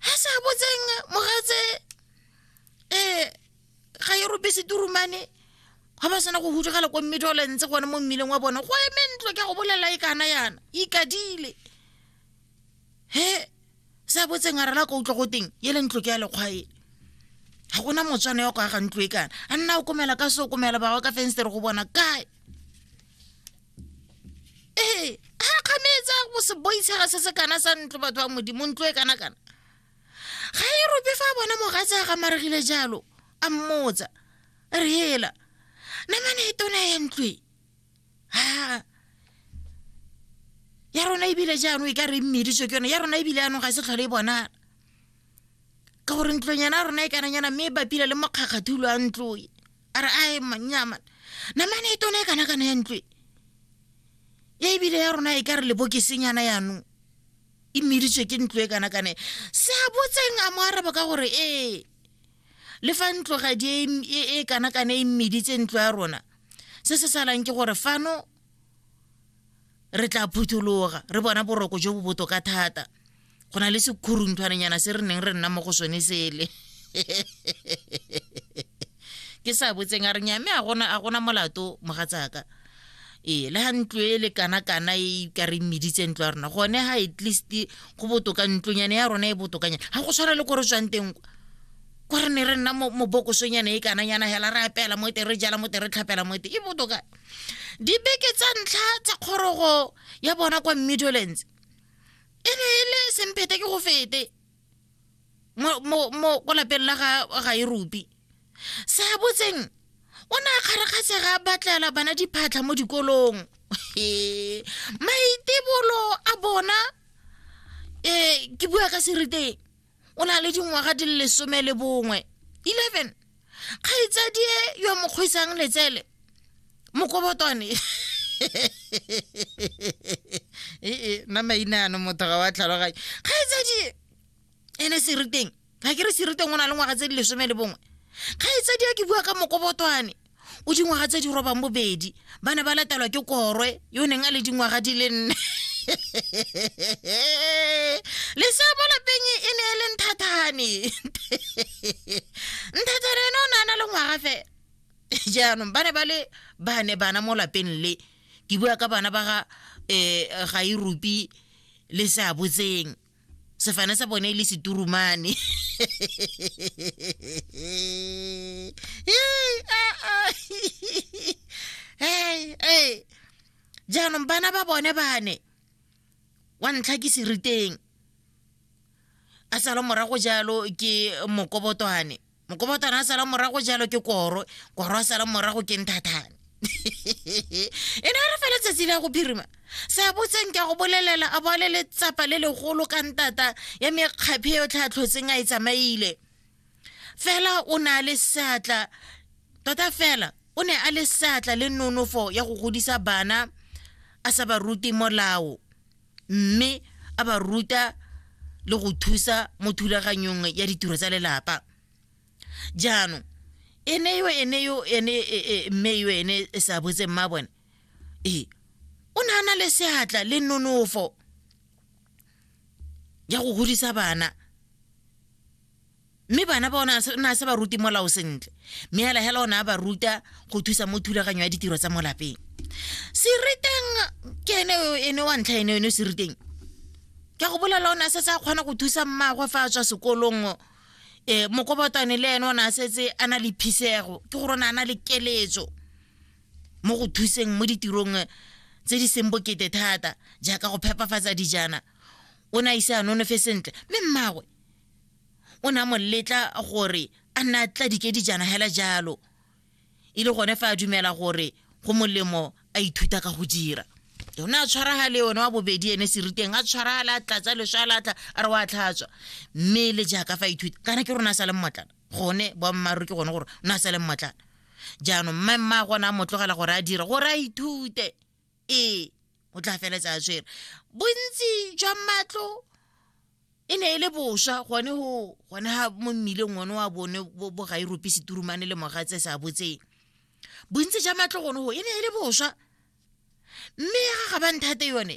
ha sa botseng mogatse eh ga e robe seturumane ga ba sena go hudugela ko mmedi o lentse gone mo mmileng wa bone go eme ntlo ke go bolela e kana yana ikadile he sa botseng a rela ka utlwa go teng e le ntlo ke ya lekgwaele ga gona motswana ya go aga ntlo e kana a nna o komela ka se o komela bawa ka fenstere go bona kae ee ga kganetse go se boitshega se se kana sa ntlo batho ba modimo ntlo e kana kana ga e rope fa bona mogatse a gamaregile jalo a mmotsa re hela namane e tona ya ntlwe ha ya rona ebile jaanong e ka re mmediswe ke yone ya rona ebile yaanong ga se tlhole e bonala ka gore ntlong yana rona e kananyana mme e bapile le mokgakgathulo a ntloe a re ae mannyama namane e tone e kana kana ya ntlo e ebile ya rona e ka re lebokesenyana yanong e meditswe ke ntlo e kana kane se a botseng a mo araba ka gore ee le fa ntlogadi e, e, e kana kane e meditse ntlo ya rona se se salang ke gore fano re tla phuthologa re bona boroko jo bo botoka thata go na le sekhurunthwananyana se re neng re nna mo go sone sele ke sa botseng a re nyame a gona molato mogatsaka ee le ga ntlo e le kana-kana e ka re meditse ntlo ya rona gone ga at least go botoka ntlonyane ya rona e botokanyana ga go tshwana le ko re tswang teng ko re ne re nna mobokosonyana e kananyana hela re apela mo te re jala mo te re tlhapela mo te e botoka dibeke tsa ntlha tsa kgorogo ya bona kwa midolance e ne e le semphete ke go fete mo ko lapeng la ga ga e rupi se a botseng o ne a kgarakgatsega batlela bana diphatlha mo dikolong maitebolo a bona um ke bua ka seriteng o na le dingwaga di le lesome le bongwe eleven kgaitsadie yo mo kgwisang letsele mokobotwane ee nna maina ano motho ga wa tlhaloganye kgaitsadie ene seriteng ga ke re seriteng o na le ngwaga tse di lesome le bongwe kgaitsadie ke bua ka mokobotwane o dingwaga tse di robang bobedi ba ne ba latelwa ke korwe yo neng a le dingwaga di le nne le sa mo lapeng e ne e le nthathane nthathane ene o ne a na le ngwaga fe jaanong ba ne ba le ba ne bana mo lapeng le ke bua ka bana ba ga um ga irupi le seabotseng sefane sa bone e le seturumane Yay, ah, ah. Hey, hey. jaanong bana ba bone bane wa ntlha ke seriteng a sala morago jalo ke mokobotwane mokobotwana a sala morago jalo ke koro koro a sala morago ke nthathane e ne re fela tsatsi la go birima sa botseng ka go bolelela a bole letsapa le legolo ka ntata ya mekgaphe yo tlhatlhotseng a e tsamaile fela o ne a le seatla tota fela o ne a le seatla le nonofo ya go godisa bana a sa ba rute molao mme a ba ruta le go thusa mo thulaganyong ya ditiro tsa lelapa jaanong e ne yo ene yo ene e, e, mme yo ene e sa botse mma bone ee o ne a na le seatla le nonofo ya go godisa bana mme bana ba o ne a se ba ruti molao sentle mme hela hela o ne a ba ruta go thusa mo thulaganyo ya ditiro tsa mo lapeng seriteng ke ene ene wa ntlha ene ene seriteng ke go bolela o ne a setse a kgona go thusa mmagwe fa a tswa sekolong um e, mokobotane le ene o ne a setse a na le phisego ke gore o ne a na le keletso mo go thuseng mo ditirong eh, tse di seng bokete thata jaaka go phepafatsa dijana o ne a ise a nonofe sentle mme mmagwe o ne a mo letla gore a nna a tla dikedijana hela jalo e le gone fa a dumela gore go molemo a ithuta ka go dira o ne a tshwaragale one wa bobedi ene seriteng a tshwaragale a tlatsa leswa a latla a re wa tlhatswa mme le jaaka fa ithuta kana ke rona a sa le mmotlana gone boammaaruri ke gone gore o ne a sa le mmotlana jaanong mmaemma a gone a mo tlogela gore a dire gore a ithute ee o tla feletsa a tshwere bontsi jwa matlo e ne e le boswa gone go gone ga mo mmileng one wa bone bo bo ga irope seturumane le mogatse sa botseng bontsi jwa matlo gone go e ne e le boswa mme ya ga ga ba nthate yone